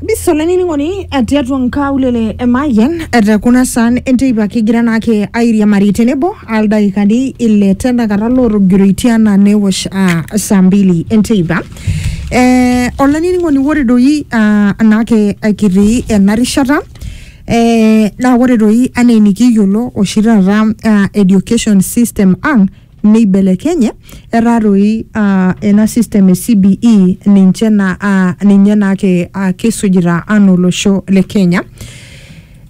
bisolanining'oni tiatua nkaulele e Mayian te kuna saan enteipa kigira naake airiamari tenebo aldaikani ile tenakata lootogiroitie anaa newosh ah, saa mbili enteipa eh, olanining'oni ore doi ah, naake kitii ena rishata eh, naa ore doi anaa enikiyiolo oshi taata ah, education system ang' neibelekenye etaa toi ah, ena system e CBE ninche na, ah, ninye naake ah, kisujita anaa olosho le Kenya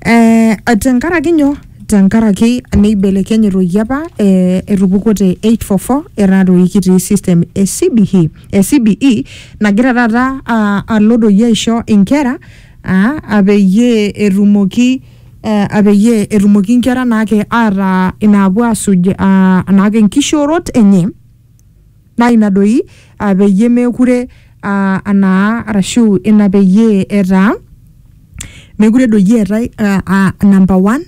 eh, tenkaraki nyoo tenkaraki neibelekenye toi apa eh, etupukuo te 844 etaa toi kitii system e CBE, e CBE nagira taata ah, alo doi aisho inkera ah, ah, peyie etumoki eh, apeyie etumoki inkera naake ataa inaapuo asuj ah, naake nkishoorot enye naa ina doi ah, peyie meekure ah, anaa arashu ina peyie etaa mekure doi eetae ah, ah, number one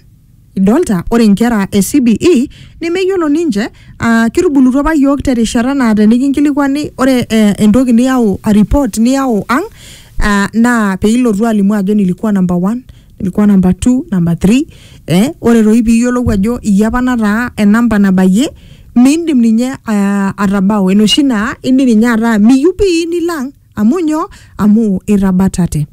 idolta ore inkera e CBE nemeyiolo ninche ah, kitubulutua apa yiok terishata naa tenikinkilikuani ore eh, entoki niyau a report niyau ang ah, naa peilotu alimu ajo nilikuwa number one ilikuwa number two number three eh, ore toi piiyiolou ajo iyie apa nataa enamba nabayie miindim ninye uh, atabau enoshi naa indim ninye ataa miyieu pii nilang amu nyoo amu itabatate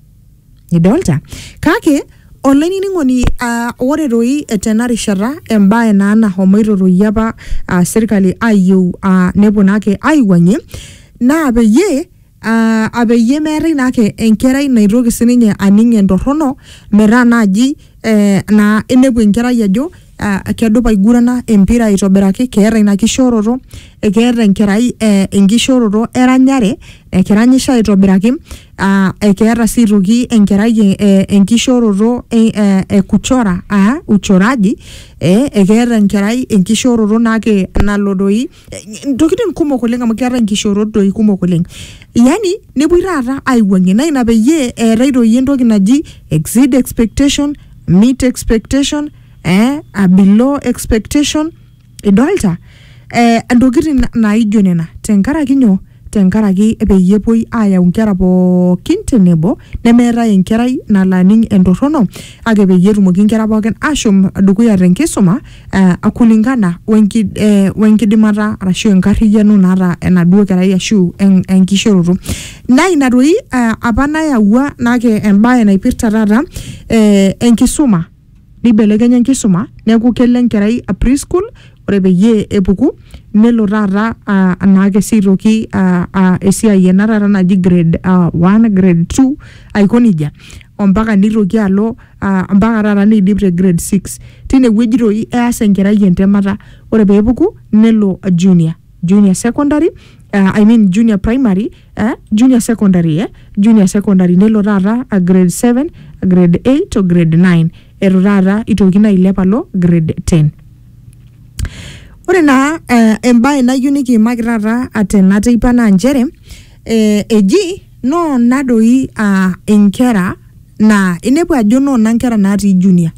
idolta kake olainining'oni uh, ore toi tena rishata embae naa nahomoito toi apa uh, serkali ayieu uh, neponaki aiwuang'ie naa peyie aa apeyie meetae naake enkerai naitoki sininye aning entorrono metaa naaji eh, naa inepu enkerai ajo ah, kedupa aigurana empira aitobiraki keeta ina kishooroto ekeeta enkerai eh, enkishooroto eranyare ekiranyisho aitobiraki uh, ekeeta sii aitoki enkerai eh, eh, enkishooroto eh, eh, e kuchora aa uchoraji eh, ekeeta enkerai enkishooroto naake nalo doi eh, ntokitin kumok oleng amu keeta nkishorot doi kumok oleng yani nepuoi taata aiwuangie naa ina peyie eetae doi entoki naji exceed expectation meet expectation eh, a below expectation idolta eh, ntokitin naijo nena tenkaraki nyoo tenkaraki peyie epuoi aayau nkera pookin tenebo nemeetae enkerai nalo aning entorrono kake peyie etumoki nkera pookin ashom dukuya tenkisuma uh, kulingana wenki, eh, wenkidimata arashu enkarriyiano naata enaduo kerai ashu en, enkishooroto naa ina toi uh, apa nayawua nake embaye naipirta taata eh, enkisuma. Neibelekenya enkisuma neaku kelo enkerai preschool ore peyie epuku nelo taata ah, anaake sii aitoki ah, ah, esiai ena taata naji grade ah, one, grade two aiko nejia ompaka neitoki alo ah, mpaka taata neidip te grade six. Tinewueji toi eas enkerai entemata ore peepuku nelo junior, junior secondary ah, I mean junior primary. eh, junior secondary eh, junior secondary nelo taata a grade 7 a grade 8 o grade 9 etu taata itokini ailep alo grade 10 ore naa eh, embae nayieu nikiimaki taata atena teipa naa nchere eh, eji noona doi ah, inkera naa inepu ajo noona nkera natii junior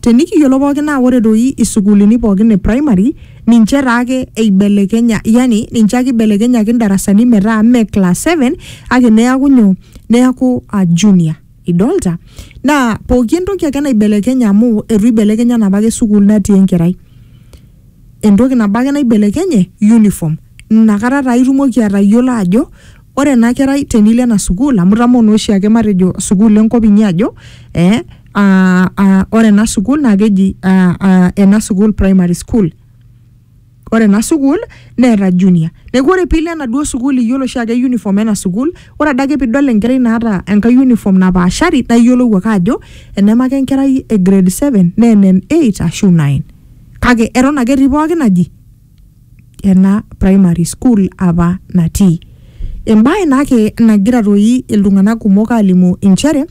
tenikiyiolo pookin naa ore doi isukuulini pookin e primary ninche taake eibelekenya yani ninche ake ibelekenyaki ndarasani metaa mme class 7 kake neaku nyoo neaku uh, junior idolta naa pooki entoki ake naibelekenya amu etu ibelekenya enapake sukuul natii enkerai entoki nabo ake naibelekenye uniform inakata taa itumoki atayiolo ajo ore ena kerai tenilo ena sukuul amu itamoo naa oshiake matejo sukuul enkop inyi ajo eh, ah, ah, ore ena sukuul naa keji ah, ah, ena sukuul primary school ore ena sukuul neeta junior neeku ore piilo enaduo sukuul iyiolo oshiake uniform ena sukuul ore adake piidol enkerai naata enkae uniform napaashari naa iyiolou ake ajo enemake enkerai e grade seven naa ene eight ashu nine. Kake eton ake etii pooki naji ena primary school apa natii. Embae naa ake nagira toi iltung'anak kumok alimu inchere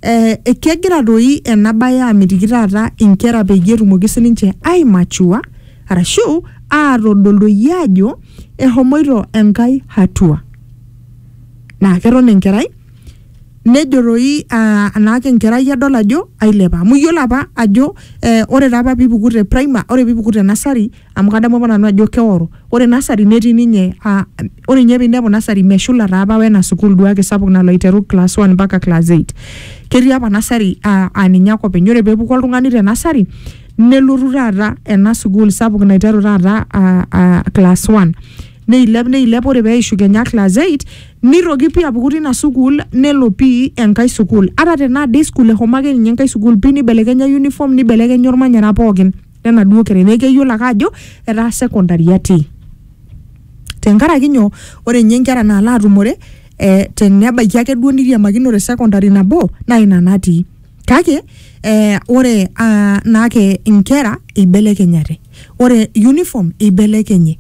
eh kegira toi ena bae amitiki taata inkera peyie etumoki sininche ai mature arashu atodol doi ajo ehomoito Enkai hatua. Naa keton enkerai nejo toi ah, anaake enkerai adol ajo ailepa amu iyiolo apa ajo eh, ore taa apa piipuku te prima ore piipuku te nasari amu kadamu apa nanu ajo keoro ore nasari netii ninye ah, ore ninye piinepu nasari meshula taa apa wena sukuul duake sapuk nalo aiteru class one mpaka class eight ketii apa nasari ah, aa ninye ake openy ore peepuku oltung'ani te nasari nelotu taata ena sukuul sapuk naiteru taata ah, ah, class one neilep neilep ore peishu kenya class 8 nirroki pii apuku tina sukuul nelo pii enkae sukuul ata tenaa day school ehomo ake ninye enkae sukuul pii nibelekenya uniform nibelekenya ormanyara pookin lenaduo kerai neeku keyiolo ake ajo etaa secondary atii tenkaraki nyoo ore inye inkera naalo atumore eh tenebaiki akeduo niriamakinote secondary nabo naa ina natii. kake eh, ore ah, naake inkera eibelekenyate ore uniform eibelekenye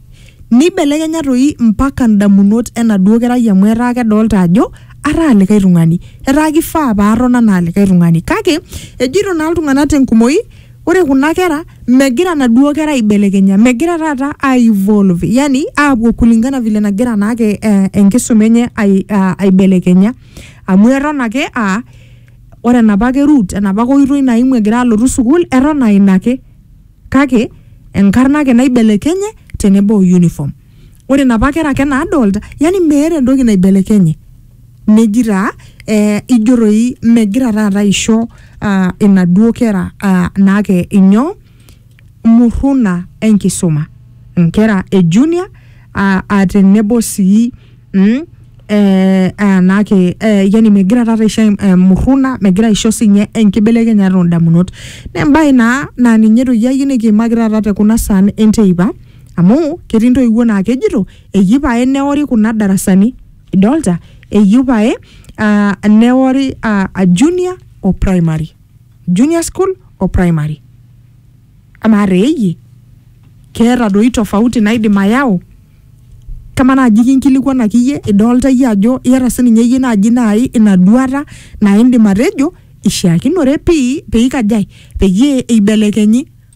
neibelekenya toi mpaka ndamunot enaduo kerai amu etaa kedolta ajo ataa likae tung'ani etaa kifaa paaton anaa likae tung'ani kake ejito naa iltung'anak tenkumoi ore kuna kera megira naduo kera aibelekenya megira taata ai evolve yani aapuo kulingana vile nagira naake eh, enkisuma enye ai, ah, aibelekenya amu eton ake aa Ore enapa ake route enapa ake oitoi naimu egira alotu sukuul eton aa ina ake kake enkarna ake naibelekenye tenebo o uniform. Ore inapa kera ake naadolta yani meeta entoki naibelekenye. Neji taa ee ijo toi megira taata aisho aa inaduo kera aa naake inyoo? Murruna enkisuma, nkera e junior aa tenebo sii mm, eh, anake eh, yani megira taata aisho eh, murruna megira aisho sinye enkibelekenyata oondamunot naa embae naa naa ninye toki ayieu nikiimaki taata te kuna saan enteipa amu ketii intoiwuo naa kejito eyieu pae neori kuna darasani idolta eyieu pae uh, neori uh, junior o primary junior school o primary amaa reeyie keeta doi tofauti naidim ayau kama naaji kinkilikuanaki iyie idolta iyie ajo iyata sininye iyie naaji naai ina duata naa indim atejo ishiakinore pii peikajae peyie eibelekenyi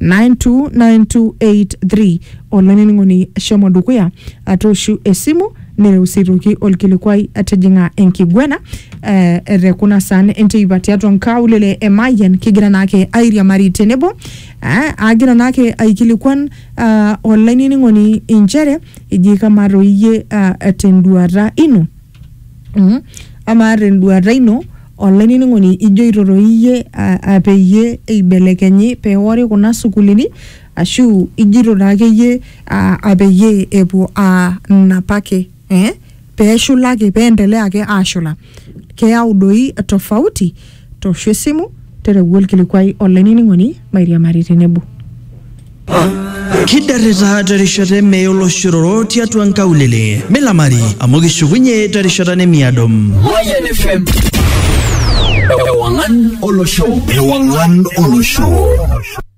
92923 olainining'oni shomo dukuya atooshu esimu nereu sii toki olkilikuai tijing'a enkiguena eh, te kuna saan enteipa tiatua nkaulele e Mayian kigira naake airiamari tenebo eh, agira naake aikilikuan ah, olainining'oni inchere iji kamaa toi iyie ah, tenduata ino Mhm. Amaa tenduata ino, olainining'oni ijoito toi iyie a- a peyie eibelekenyi peori kuna sukuulini, ashu ijoito takeyie a- a peyie epuo aa napa ake. Eh? Peshula ake, peendelea ake ashula. Keeu doi tofauti. Toosho esimu, tereu olkilikuai olainining'oni mairiamari tenebo. Kidarita terishata e mee oloshororo tiatua nkaulele. Milamari amu kishukunye terishata nemiado. Mayan FM. Ewangan Olosho. Ewangan Olosho.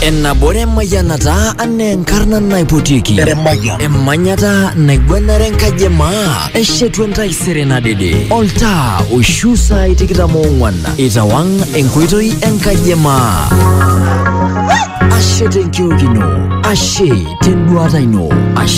Enabore mayanata ane nkarna naipotiki. Emanyata naigwanare enkaji e maa. Eshetu entaisere nadede. Oltaa oishu saai tikitam oong'wan. Itawang' enkoitoi enkaji e maa. Ashe tenkiok ino. Ashe tenduata ino. Ashe